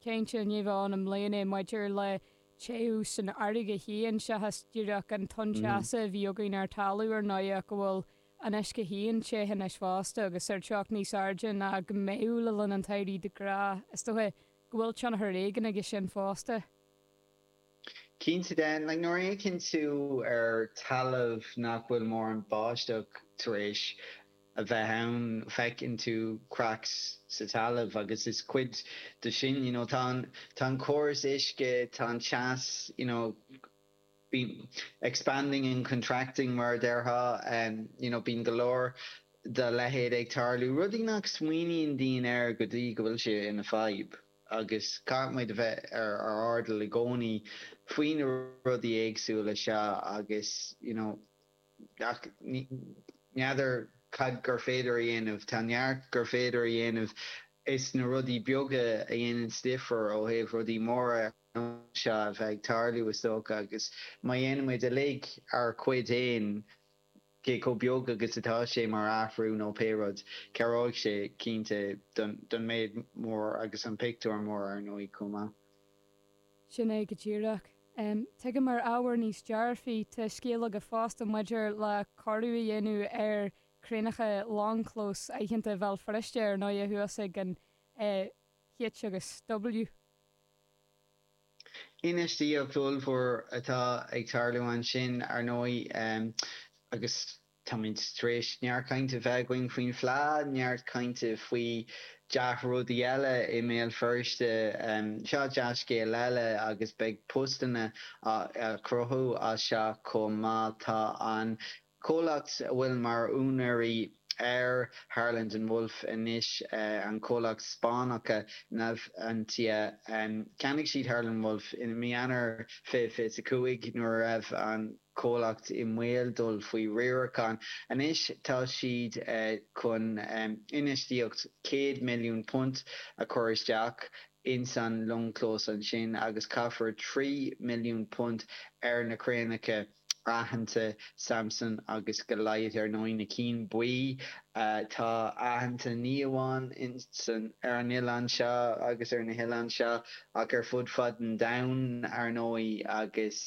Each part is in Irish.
Cinnte, ní bheadh ionadh i mbliana maidir le téamh sa fharraige féin, seachas díreach an tonn teasa a bhí againn ar talamh, ar ndóigh, ach go bhfuil an uisce féin te anois fosta agus ar teocht níos airde ná mar a mbeadh le linn an tsamhraidh de ghnáth. Is dócha go bhfuil tionchar éigin aige sin fosta. Cinnte de, nuair a fhéachann tú ar talamh nach bhfuil mórán báisteach tar éis a bheith ann, feiceann tú cracks sa talamh agus is cuid de sin, you know, tá an córas uisce, tá an teas, you know, bíonn expanding and contracting mar a déarfá, you know, bíonn go leor dá leithéid ag tarlú, rudaí nach smaoiníonn daoine air go dtí go bhfuil sé ina fadhb. agus caithfimid a bheith ar ár n-airdeall i gcónaí faoi na rudaí éagsúla seo agus you know n'fheadar cad gur féidir a dhéanamh, tá neart gur féidir a dhéanamh is na rudaí beaga a dhéanann difear ó thaobh rudaí móra ar nós seo a bheith ag tarlú is dócha agus má dhéanaimid uilig ár gcuid fhéin, cé chomh beag agus atá sé mar athrú nó pé rud, cabhróidh sé, cinnte, don méid mór agus an pictiúr mór, ar ndóigh, chomh maith. Sin é go díreach. Tuigim ar ábhar níos dearfaí, tá scéal agat fosta maidir le cóiriú a dhéanamh ar chraenacha longchlóis aitheanta Bhéal Feirste, ar ndóigh, thuas ag an H agus W. Infheistíocht ollmhór atá ag tarlú ansin, ar ndóigh, agus táimid tar éis neart cainte a bheith againn faoin bhFleadh, neart cainte faoi dea-rudaí eile i mBéal Feirste. Seo dea-scéal eile agus beidh postanna á gcruthú as seo chomh maith. Tá an. Comhlacht a bhfuil mar úinéirí ar Harland and Wolff anois, an comhlacht Spáinneach Navantia. Cheannaigh siad Harland and Wolff i mí Eanáir 2025 nuair a raibh an comhlacht i mbaol dul faoi riarachán. Anois tá siad chun infheistíocht £100 milliún a chur isteach ins an longchlós ansin agus caithfear £3 milliún ar na craenacha. aitheanta, Samson agus Goliath ar ndóigh, na cinn bhuí atá aitheanta ní amháin ar an oileán seo agus ar na hoileáin seo ach ar fud fad an domhain ar ndóigh agus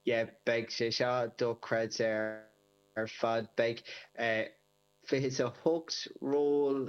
yeah beidh sé seo dochreidte ar fad. Beidh 28 ról.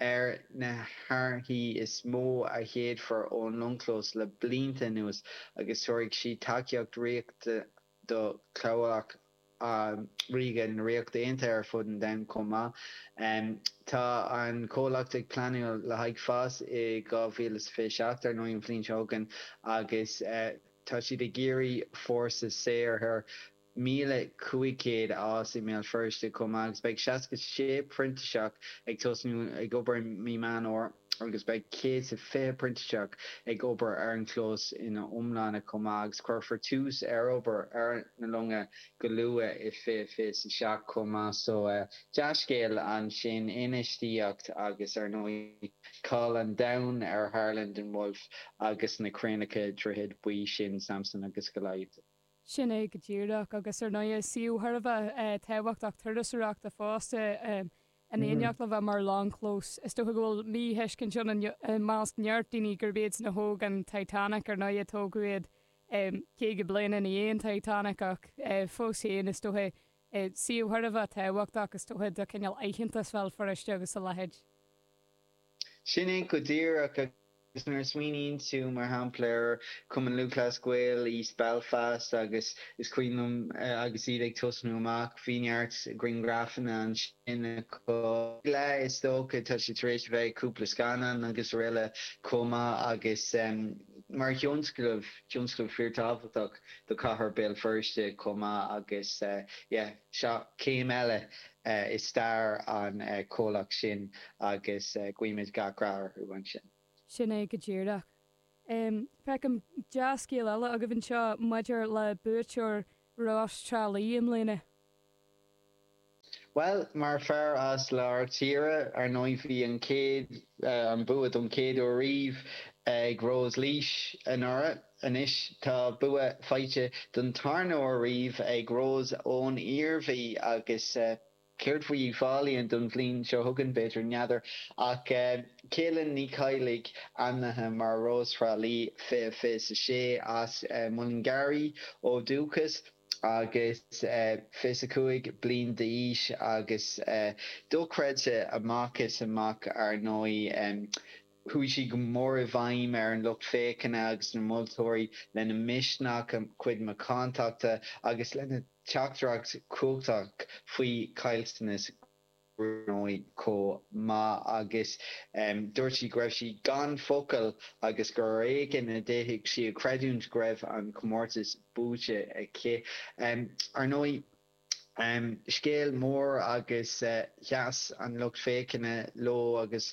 Ar na hárthaí is mó a sheachadfar ón longchlós le blianta anuas agus tabharfaidh siad tacaíocht riachtanach do chabhlach ríoga na Ríochta Aontaithe ar fud an domhain chomh maith. Tá an comhlacht ag pleanáil le haghaidh fás i 2027, ar ndóigh, an bhliain seo chugainn, agus tá siad ag iarraidh fórsa saothair. 1,500 áit i mBéal Feirste chomh maith agus beidh 66 printíseach ag tosnú ag obair i mí Meán Fhómhair agus beidh 120 printíseach ag obair ar an chlós ina iomláine chomh maith agus cuirfear tús ar obair ar na longa go luath i 2027 chomh maith. So dea-scéal ansin, infheistíocht agus ar ndóigh cáil an domhain ar Harland and Wolff agus na craenacha droichead buí sin, Samson agus Goliath. Sin é go díreach, agus ar ndóigh is suíomh thar a bheith tábhachtach turasóireachta fosta é in éineacht le bheith mar longchlós. Is dócha go bhfuil míthuiscint ann i measc neart daoine gurb iadsan a thóg an Titanic, ar ndóigh tógadh iad caoga bliain ina dhiaidh an Titanic ach fós féin is dócha suíomh thar a bheith tábhachtach is dócha do chineál aitheantas Bhéal Feirste agus a leithéid. Sin é go díreach, agus nuair a smaoiníonn tú, mar shampla, ar Chumann Lúthchleas Gael East Belfast agus is cuimhin liom agus iad ag tosnú amach, bhí neart grianghrafanna ansin acu, ag leath is dócha, tá siad tar éis a bheith i gcúpla scannán agus aroile chomh maith agus mar thionscnamh, tionscal fíorthábhachtach do chathair Béal Feirste chomh maith agus yeah. Seo céim eile i stair an chomhlacht sin agus guímid gach rath orthu ansin. Sin é go díreach. Feicim dea-scéal eile agaibh anseo maidir le buaiteoir Rós Thrá Lí i mbliana. Bhuel, mar fear as lár tíre, ar ndóigh bhí an chéad, an bua don chéad uair riamh ag Rós Laois anuraidh. Anois tá bua faighte don tarna uair riamh ag Rós ón Iarmhí agus céard faoi Uíbh Fhailí don bhliain seo chugainn? B'fhéidir, n'fheadar. Ach Kaylin Ní Chadhlaigh ainmnithe mar Rós Thrá Lí 2026 as Mullingar í ó dhúchas agus 25 bliain d'aois agus dochreidte amach is amach, ar ndóigh. Chuaigh sí go mór i bhfeidhm ar an lucht féachana agus na moltóirí lena misneach, a cuid macántachta agus lena teachtaireacht chumhachtach faoi chaillteanas gruaige chomh maith agus dúirt sí go raibh sí gan focail agus gur ar éigean a d'fhéadfadh sí a chreidiúint go raibh an comórtas buaite aici. Ar ndóigh, scéal mór agus sheas an lucht féachana leo agus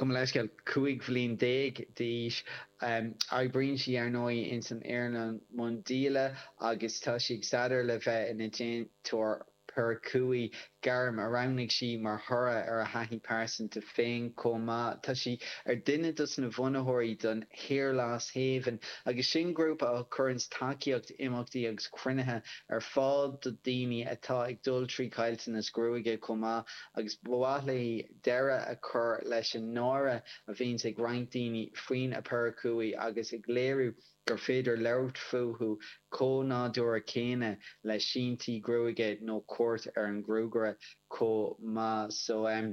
Gabhaim leithscéal, cúig bhliain déag d'aois. Oibríonn sí, ar ndóigh, ins an earnáil miondíola agus tá sí ag staidéar le bheith ina déantóir peiriúicí, gairm a roghnaigh sí mar thoradh ar a thaithí pearsanta féin chomh maith. Tá sí ar duine dos na bhunaitheoirí don Hair Loss Haven agus sin grúpa a chuireanns tacaíocht, imeachtaí agus cruinnithe ar fáil do daoine atá ag dul trí chaillteanas gruaige chomh maith agus ba mhaith léi deireadh a chur leis an náire a bhíonns ag roinnt daoine faoina bpeiriúicí agus ag léiriú gur féidir labhairt fúthu chomh nádúra céanna le síntí gruaige nó cuairt ar an gruagaire chomh maith so em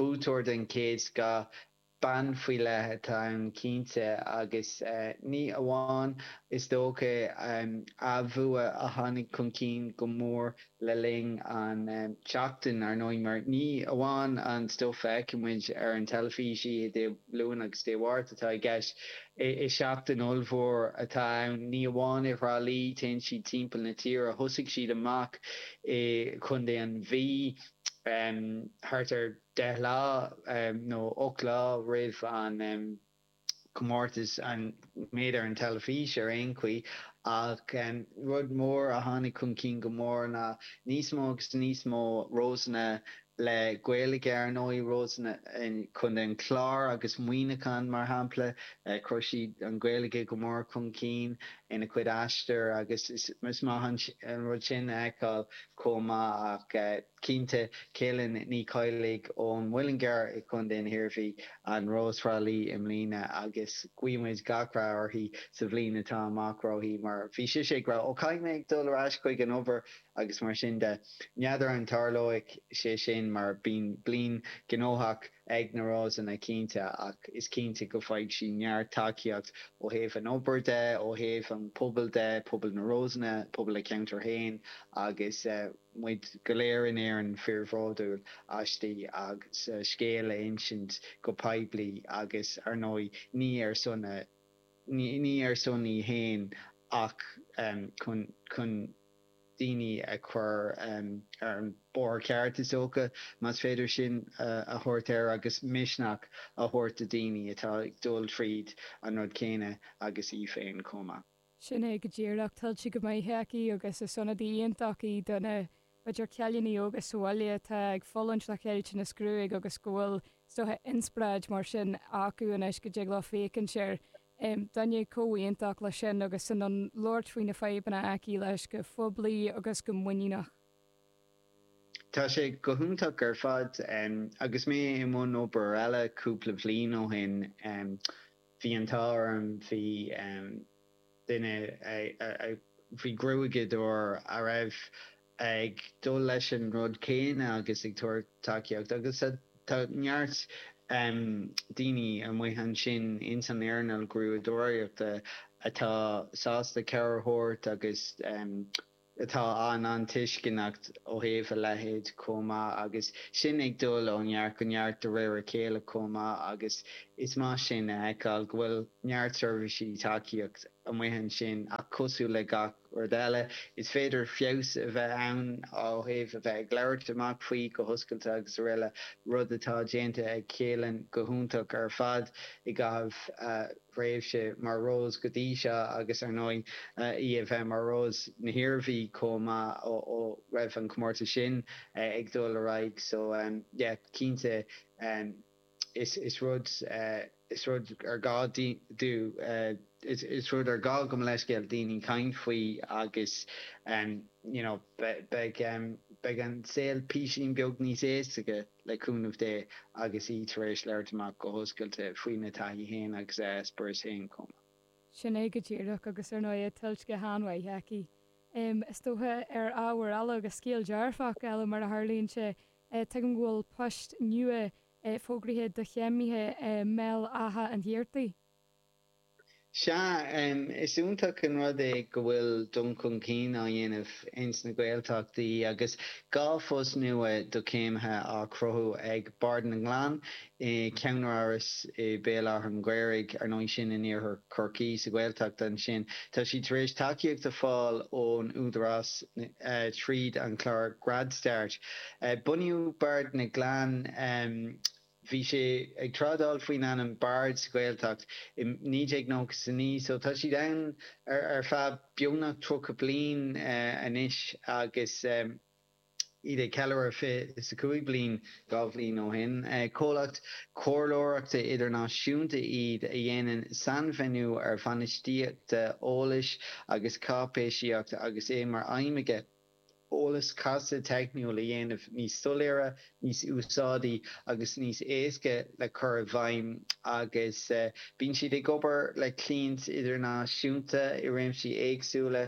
buaiteoir den chéad scoth Bean faoi leith atá ann cinnte agus ní amháin is dócha a bhua a tháinig chun cinn go mór le linn an tseachtain, ar ndóigh, mar ní amháin an stuif a fheicfidh muid ar an teilifís oíche Dé Luain agus Dé Mháirt atá i gceist. Is seachtain ollmhór atá ann, ní amháin i Thrá Lí, téann siad timpeall na tíre, thosaigh siad amach i gContae an Mhí, thart ar. 10 lá nó 8 lá roimh an comórtas an méid ar an teilifís ar aon chaoi ach rud mór a tháinig chun cinn go mór ná níos mó agus níos mó Rósanna le Gaeilge ar ndóigh Rósanna Chontae an Chláir agus Muineachán mar shampla chuir siad an Gaeilge go mór chun cinn ina chuid aistear agus is maith an rud sin a fheiceáil chomh maith ach Cinnte, Kaylin Ní Choigligh ón Muileann gCearr i gContae na hIarmhí, an Rós Thrá Lí i mbliana agus guímid gach rath uirthi sa bhliain atá amach roimpi mar bhí sise ag rá 'Ó caithfidh mé ag dul ar ais chuig an obair' agus mar sin de. N'fheadar an dtarlóidh sé sin mar bíonn bliain gnóthach ag na Rósanna cinnte ach is cinnte go bhfaighidh sí neart tacaíocht ó thaobh an obair de, ó thaobh an pobail de, pobal na Rósanna, pobal a ceantair féin agus. muid go léir in Éirinn fíorbhródúil aisti as a scéal a insint go poiblí agus, ar ndóigh, ní ar son a ní ar son í féin ach chun chun daoine a chur ar an bóthar ceart is dócha, más féidir sin a thabhairt air, agus misneach a thabhairt do daoine atá ag dul tríd an rud céanna agus í féin chomh maith. Sin é go díreach. Tuillte go maith aici agus is ionadaí iontach í do na idir chailíní óga sa bhaile atá ag fulaingt le cailleadh na gruaige agus go bhfuil, is dócha, inspioráid mar sin acu anois go dtig leo féachaint ar dhuine chomh iontach leis sin agus in ann labhairt faoi na fadhbanna aici leis go phoiblí agus go muiníneach. Tá sé go hiontach ar fad. Agus mé i mbun obair eile cúpla bhliain ó shin, Bhí an t-ádh orm, bhí duine, bhí gruaigeadóir a raibh ag dul leis an rud céanna agus ag tabhairt tacaíocht agus tá neart daoine amuigh ansin ins an éarnáil gruaigeadóireachta atá sásta cabhair a thabhairt agus atá an-an-tuisceanach ó thaobh a leithéid chomh maith agus sin ag dul ó neart go neart de réir a chéile chomh maith agus is maith sin a fheiceáil go bhfuil neart seirbhísí tacaíocht amuigh ansin ach cosúil le gach rud eile is féidir feabhas a bheith ann ó thaobh a bheith ag labhairt amach faoi go hoscailte agus aroile rud atá déanta ag Keelan go hiontach ar fad i gcaitheamh a thréimhse mar Rós go dtí seo agus, ar ndóigh, í a bheith mar Rós na hIarmhí chomh maith ó raibh an comórtas sin ag dul ar aghaidh. So, yeah, cinnte, is rud, is rud ar gá di, is rud ar gá go mo leithscéal, daoine caint faoi agus, you know, beidh, beidh an saol píosín beag níos éasca. le cúnamh Dé, agus í tar éis labhairt amach go hoscailte faoina taithí féin agus a eispéireas féin chomh maith. Sin é go díreach, agus ar ndóigh tuillte go han-mhaith aici, is dócha, ar ábhair eile agus scéal dearfach eile mar a tharlaíonn sé. Tuigim go bhfuil poist nua fógraithe do chéimithe i mBéal Átha an Ghaorthaidh. Sea, is iontach an rud é go bhfuil dul chun cinn á dhéanamh ins na Gaeltachtaí agus dhá phost nua do chéimithe á gcruthú ag Bard na nGleann i gceannáras i mBéal Átha an Ghaorthaidh, ar ndóigh sin in iarthar Chorcaí, sa Ghaeltacht ansin. Tá siad tar éis tacaíocht a fáil ón Údarás tríd an chlár Grad Start. Bunaíodh Bard na nGleann. Bhí sé ag trádáil faoin ainm Bard sa Ghaeltacht i 1999 so tá siad ann ar feadh beagnach 30 bliain anois agus iad ag ceiliúradh 25 bliain dhá bhliain ó shin. Comhlacht comhairleoireachta idirnáisiúnta iad a dhéanann sainfheidhmiú ar bhainistíochta eolais agus cáipéisíocht agus é mar aidhm aici. eolas casta teicniúil a dhéanamh níos soiléire, níos úsáidí agus níos éasca le cur i bhfeidhm agus bíonn siad ag obair le cliaint idirnáisiúnta i réimsí éagsúla,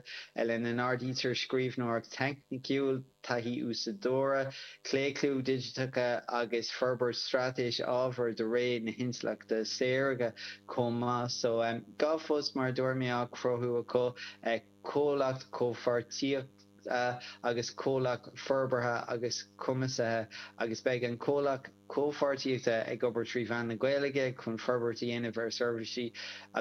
lena n-áirítear scríbhneoireacht theicniúil, taithí úsáideora, claochlú digiteacha agus forbairt straitéis ábhar do ré na hintleachta saorga chomh maith. So, dhá phost mar a dúirt mé á chruthú acu. comhlach comhpháirtíochta agus comhlacht forbartha agus cumasaithe agus beidh an comhlach comhpháirtíochta ag obair trí mheán na Gaeilge chun forbairt a dhéanamh ar sheirbhísí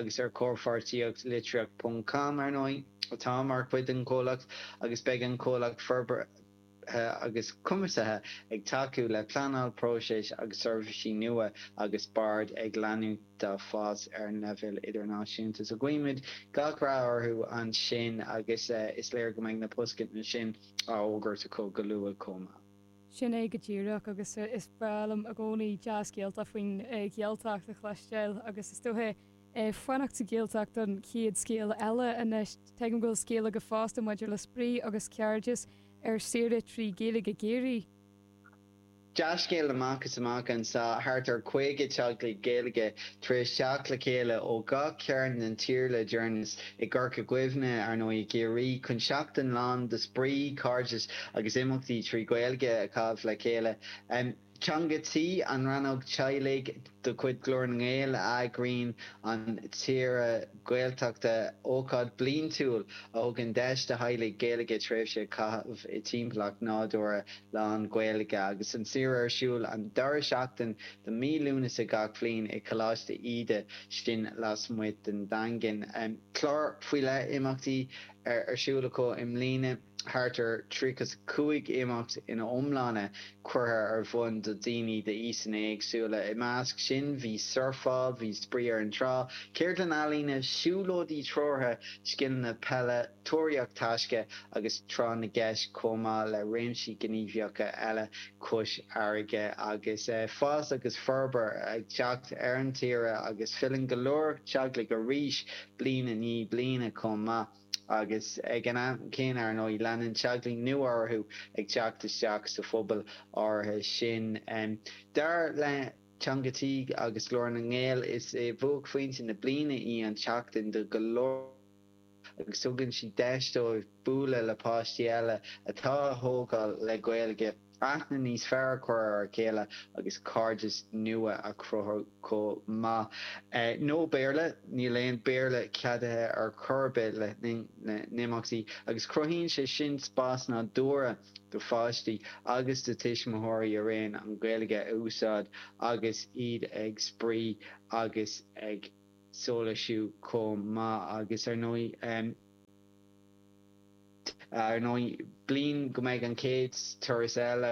agus ar chomhpháirtíocht Litríocht ponc com, ar ndóigh, atá mar chuid den chomhlacht agus beidh an comhlach forbartha. agus cumasaithe ag tacú le pleanáil, próiseas agus seirbhísí nua agus Bard ag leanúint dá fás ar an leibhéal idirnáisiúnta so guímid gach rath orthu ansin agus is léir go mbeidh na postanna sin á fhógairt acu go luath chomh maith. Sin é go díreach agus is breá liom i gcónaí dea-scéalta faoin Ghaeltacht a chloisteáil agus is dóiche ag fanacht sa Ghaeltacht don chéad scéal eile anois. Tuigim go bhfuil scéala agat fosta maidir le spraoi agus cairdeas ar saoire trí Ghaeilge i gCiarraí. Dea-scéal amach is amach anseo, thart ar 50 teaglaigh Gaeilge tar éis teacht le chéile ó gach cearn den tír le deireanas, i gCorca Dhuibhne, ar ndóigh, i gCiarraí, chun seachtain lán de spraoi, cairdeas agus imeachtaí trí Ghaeilge a chaitheamh le chéile. Teanga Tí, an rannóg teaghlaigh de chuid Ghlór na nGael a eagraíonn an tsaoire Gaeltachta, ócáid bliaintiúil a thugann deis do theaghlaigh Gaeilge tréimhse a chaitheamh i dtimpeallacht nádúrtha lán Ghaeilge agus an tsaoire ar siúl an dara seachtain de mí Lúnasa gach bliain i gColáiste Íde, sin lasmuigh den Daingean. Clár faoi leith imeachtaí ar ar siúl acu i mbliana. Thart ar tríocha is a cúig imeacht ina iomláine curtha ar bhun do daoine d'aoiseanna éagsúla. I measc sin bhí surfáil, bhí Spraoi ar an Trá, ceardlann ealaíne, siúlóidí treoraithe, scileanna peile, tóraíocht taisce agus tráth na gceist chomh maith le réimsí gníomhaíochta eile cois farraige. Agus fás agus forbairt ag teacht ar an tsaoire agus filleann go leor teaghlaigh arís bliain i ndiaidh bliana chomh maith. agus ag an am céanna, ar ndóigh, leanann teaglaigh nua orthu ag teacht isteach sa phobal áirithe sin. Dar le Teanga Tí agus Glór na nGael, is é bhuaicphointe na bliana í an tseachtain do go leor acu agus tugann sí deis dóibh bualadh le páistí eile atá á thógáil le Gaeilge. Aithne níos fearr a chur ar a chéile agus cairdeas nua a chruthú chomh maith. No Béarla, níl aon Béarla ceadaithe ar chor ar bith le linn na n-imeachtaí agus cruthaíonn sé sin spás nádúrtha do pháistí agus do tuismitheoirí araon an Ghaeilge a úsáid agus iad ag spraoi agus ag sóisialú chomh maith agus ar ndóigh Ar ndóigh, bliain go mbeidh an chéad turas eile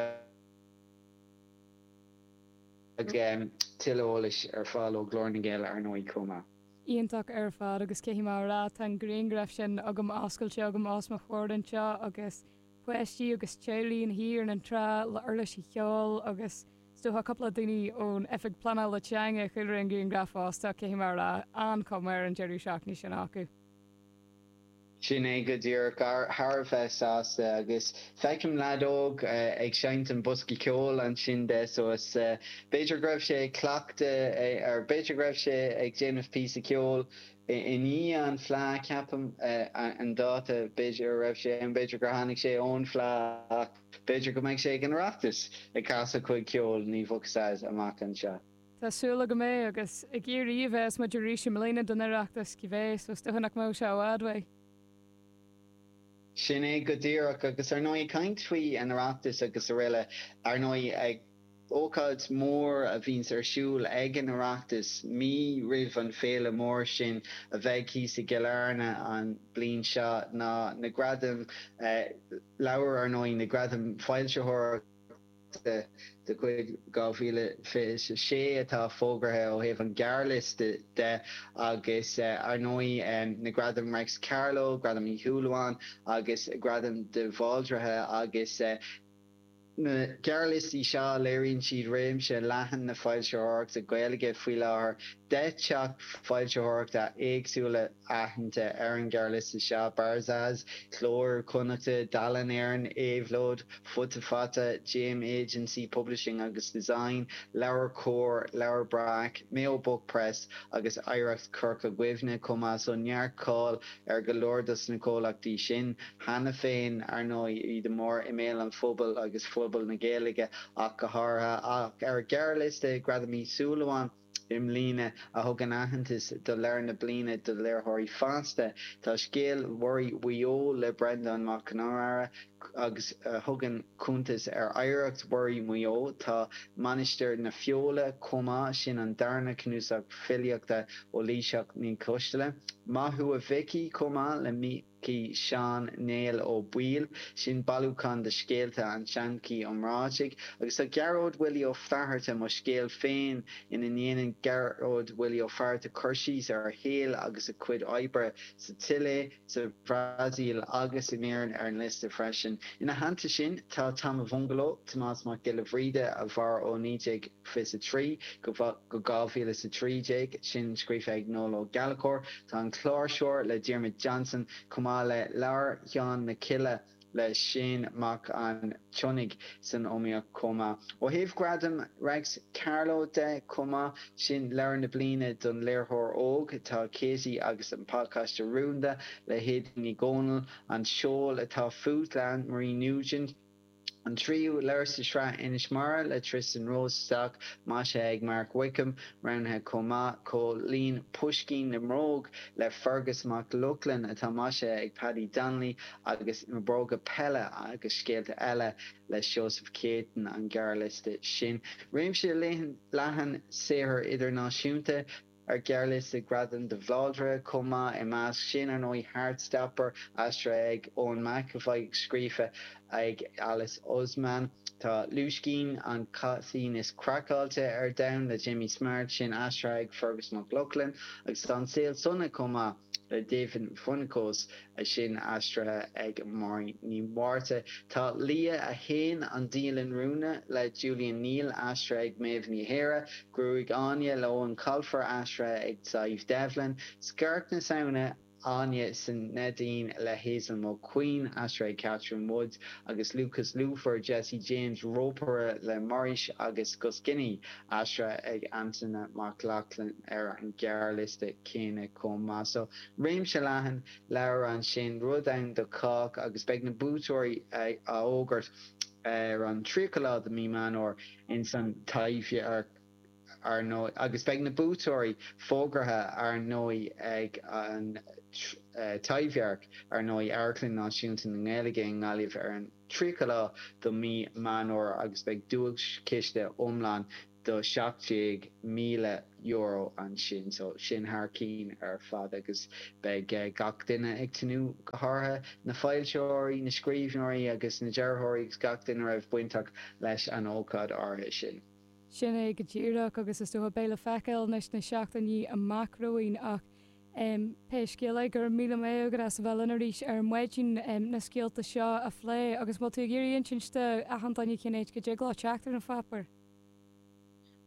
agus tuilleadh eolais ar fáil ó Ghlór na nGael ar ndóigh chomh maith. Iontach ar fad agus cé hí mar atá an grianghraf sin agam oscailte agam os mo chomhair anseo agus páistí agus teaghlaigh ina shuí ar an trá le uirlisí cheoil agus is dócha cúpla daoine ón Oifig Pleanála Teanga i gcúlra an grianghraf fosta cé hí mar atá an-chuma ar an deireadh seachtaine sin acu. Sin é go díreach. Thar a bheith sásta. Agus feicim leaid óg ag seinnt an bosca ceoil ansin de suas. B'fhéidir go raibh sé ag cleachtadh or b'fhéidir go raibh sé ag déanamh píosa ceoil i ndiaidh an fleadh, ceapaim an dáta, b'fhéidir a raibh sé ann, b'fhéidir gur tháinig sé ón fleadh ach b'fhéidir go mbeidh sé ag an Oireachtas ag casadh a chuid ceoil, ní bheadh a fhios agat amach anseo. Tá súil agam é agus i gCiarraí a bheas muid arís i mbliana don Oireachtas, cibé, so is dócha nach mbeidh sé i bhfad uaidh. Sin é go díreach agus ar ndóigh ag caint faoi an Oireachtas agus aroile, ar ndóigh ag ócáid mór a bhíonns ar siúl ag an Oireachtas mí roimh an féile mór sin a bheidh thíos i gCill Airne an bliain seo ná na gradaim leabhar, ar ndóigh na gradaim foilsitheoireachta. de chuid 2026 atá fógartha ó thaobh an ghearrliosta de agus ar ndóigh na Gradam Réics Carló, Gradam Uí Shúilleabháin agus Gradam de Bhaldraithe agus na gearrliostaí seo léiríonn siad réimse leathan na foilsitheoireachta Gaeilge faoi láthair, deich dteach foilsitheoireachta éagsúla. aitheanta ar an ghearrliosta seo, Barzaz, Cló Iar-Chonnachta, Dalen Éireann, Éabhlóid, Futa Fata, JM Agency Publishing agus Design, LeabhairCOMHAR, Leabhar Breac, Mayo Book Press agus Oidhreacht Chorca Dhuibhne, chomh maith so neart cáil ar go leor dos na comhlachtaí sin. Cheana féin, ar ndóigh, iad go mór i mbéal an phobail agus phobal na Gaeilge ach go háirithe, ach ar ghearrliosta Gradam Uí Shúilleabháin, i mbliana a thugann aitheantas do leabhar na bliana do léitheoirí fásta. Tá Scéal Muirí Mhaigh Eo le Breandán Mac Con Iomaire agus a thugann cuntas ar oidhreacht mhuirí Mhaigh Eo. Tá Mainistir na Feola chomh maith, sin an darna cnuasach filíochta ó Laoighseach Ní Choistealbha. Maith thú a Mhicí chomh maith le Mí. cí Sheáin Néill Ó Baoill. Sin bailiúchán de scéalta an tseanchaí iomráitigh. Agus tá Gearóid Willie Ó Fátharta, Mo Scéal Féin, ina ndéanann Gearóid Willie Ó Fátharta cur síos ar a shaol agus a chuid oibre sa tSile, sa Bhrasaíl agus in Éirinn ar an liosta freisin. Ina theannta sin, tá Tom a Bhungalow, Tomás Mac Giolla Bhríde, a mhair ó 19. 23-2013, sin scríofa ag Noel Ó Gallchóir. Tá An Cláirseoir le Diarmuid Johnson, chomh maith le Leabhar Sheáin na Cille le Seán Mac an tSionnaigh san iomaíocht chomh maith. Ó thaobh Ghradam Réics Carló de chomh maith, sin Leabhar na Bliana don Léitheoir Óg, tá Katie agus an Pacáiste Rúnda le hAedín Ní Dhomhnaill, An Seol atá Fút le Anne Marie Nugent, An tríú leabhar sa tsraith Inis Mara le Tristan Rosenstock, maisithe ag Mark Wickham, roghnaithe chomh maith, comhlíon Puisín na mBróg le Fearghas Mac Lochlainn, atá maisithe ag Paddy Donnelly, agus Na Bróga Peile agus Scéalta Eile le Seosamh Céitinn an gearrliosta sin. Réimse leathan saothar idirnáisiúnta. ar ghearrliosta Ghradam de Bhaldraithe chomh maith, i measc sin, ar ndóigh, Heartstopper, aistrithe ag Eoin McEvoy agus scríofa ag Alice Oseman. Tá Lúiscín, an Caitín is Craiceáilte ar Domhan le Jamie Smart, sin aistrithe ag Fearghas Mac Lochlainn, agus tá An Saol Sona chomh maith. Le David Foenkinos, sin aistrithe ag Máirín Ní Mhárta. Tá Leah 1, An Dialann Rúnda le Julien Neel aistrithe ag Meadhbh Ní Eadhra. Gruaig Áine le Eoin Colfer aistrithe ag Sadhbh Devlin. Scairt na Samhna, Áine san Neidín le Hazel Mulqueen aistrithe ag Catherine Woods agus Lúcás Lúfar, Jesse James, Ropaire le Morris agus Goscinny. Aistrithe ag Antaine Mac Lochlainn ar an ghearrliosta céanna chomh maith. So, réimse leathan leabhar ansin, rud ann do chách agus beidh na buaiteoirí á fhógairt ar an 30 lá de mí Meán Fómhair ins An Taibhdhearc ar ndóigh agus beidh na buaiteoirí fógartha ar ndóigh ag an Taibhdhearc ar ndóigh, Amharclann Náisiúnta na nGaeilge i nGaillimh ar an. 30 lá do mhí Meán Fómhair agus beidh duaischiste iomlán do €17,000 ansin so sin thar cinn ar fad agus beidh gach duine ag tnúth go háirithe na foilseoirí, na scríbhneoirí agus na dearthóirí agus gach duine a raibh bainteach leis an ócáid áirithe sin. Sin é go díreach agus is dócha beidh le feiceáil anois sna seachtainí amach romhainn ach Pé scéal é, go raibh míle maith agat as a bheith linn arís ar maidin na scéalta seo a phlé. Agus an bhfuil tú ag iarraidh insint do achan duine cén áit go dtig leo teacht ar an pháipéar?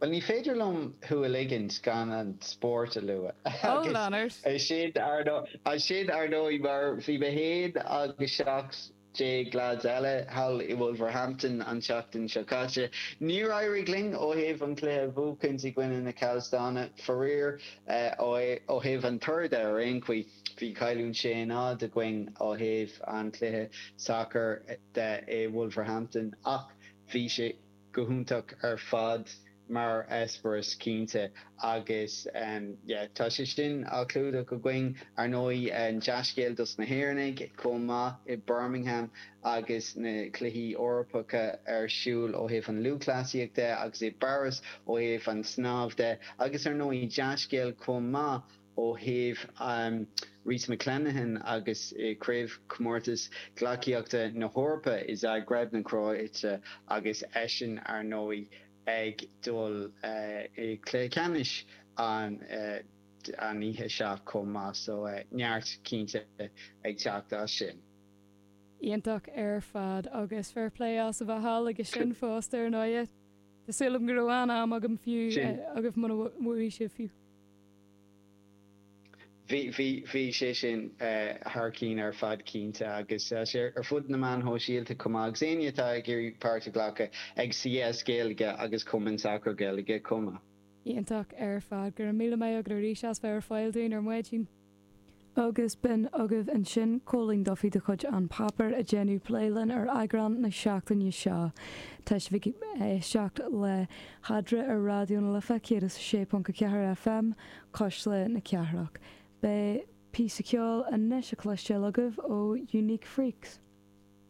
Bhuel, ní féidir liom thú a ligint gan an spórt a lua. Agus sin, ar ndóigh, mar bhí mé féin agus seacht. déag leads eile thall i Wolverhampton an tseachtain seo caite. Níor éirigh linn ó thaobh an cluiche a bhuachaint i gcoinne na Cavs dána, faraor. Ó thaobh an toradh de ar aon chaoi, bhí cailliúint sé náid againn ó thaobh an chluiche sacair de i Wolverhampton ach bhí sé. go hiontach ar fad mar eispearas cinnte agus yeah tá sé sin á chlúdach againn ar ndóigh dea-scéal dos na hÉireannaigh chomh maith i Birmingham agus na cluichí Eorpacha ar siúl ó thaobh an lúthchleasaíocht de agus i bPáras ó thaobh an snámh de agus ar ndóigh dea-scéal chomh maith Ó thaobh Rhys McClenaghan agus Craobhchomórtas Gleacaíochta na hEorpa i Zagreb na Cróite agus eisean, ar ndóigh, ag dul i gcluiche ceannais an oíche seo chomh maith so neart cinnte ag teacht as sin. Iontach ar fad agus fair play as a bheith thall aige sin fosta, ar ndóigh. Tá súil agam go raibh an-am agam fiú, agaibh, mura bhfuair sibh fiú. Bhí, bhí, bhí sé sin thar cinn ar fad cinnte agus tá sé ar fud na meán shóisialta chomh maith agus éinne atá ag iarraidh páirt a ghlacadh ag CS Gaeilge agus Cumann Sacair Gaeilge chomh maith. Iontach ar fad. Go raibh míle maith agat arís as bheith ar fáil dúinn ar maidin. Agus b'in agaibh ansin Cóilín Duffy de chuid An Páipéar ag déanamh plé linn ar eagrán na seachtaine seo. Tá sibh ag éisteacht le hAdhmhaidin ar Raidió na Life 106.4 FM, Cuisle na Cathrach. Beidh píosa ceoil anois a cloisteáil agaibh ó Unique Freaks.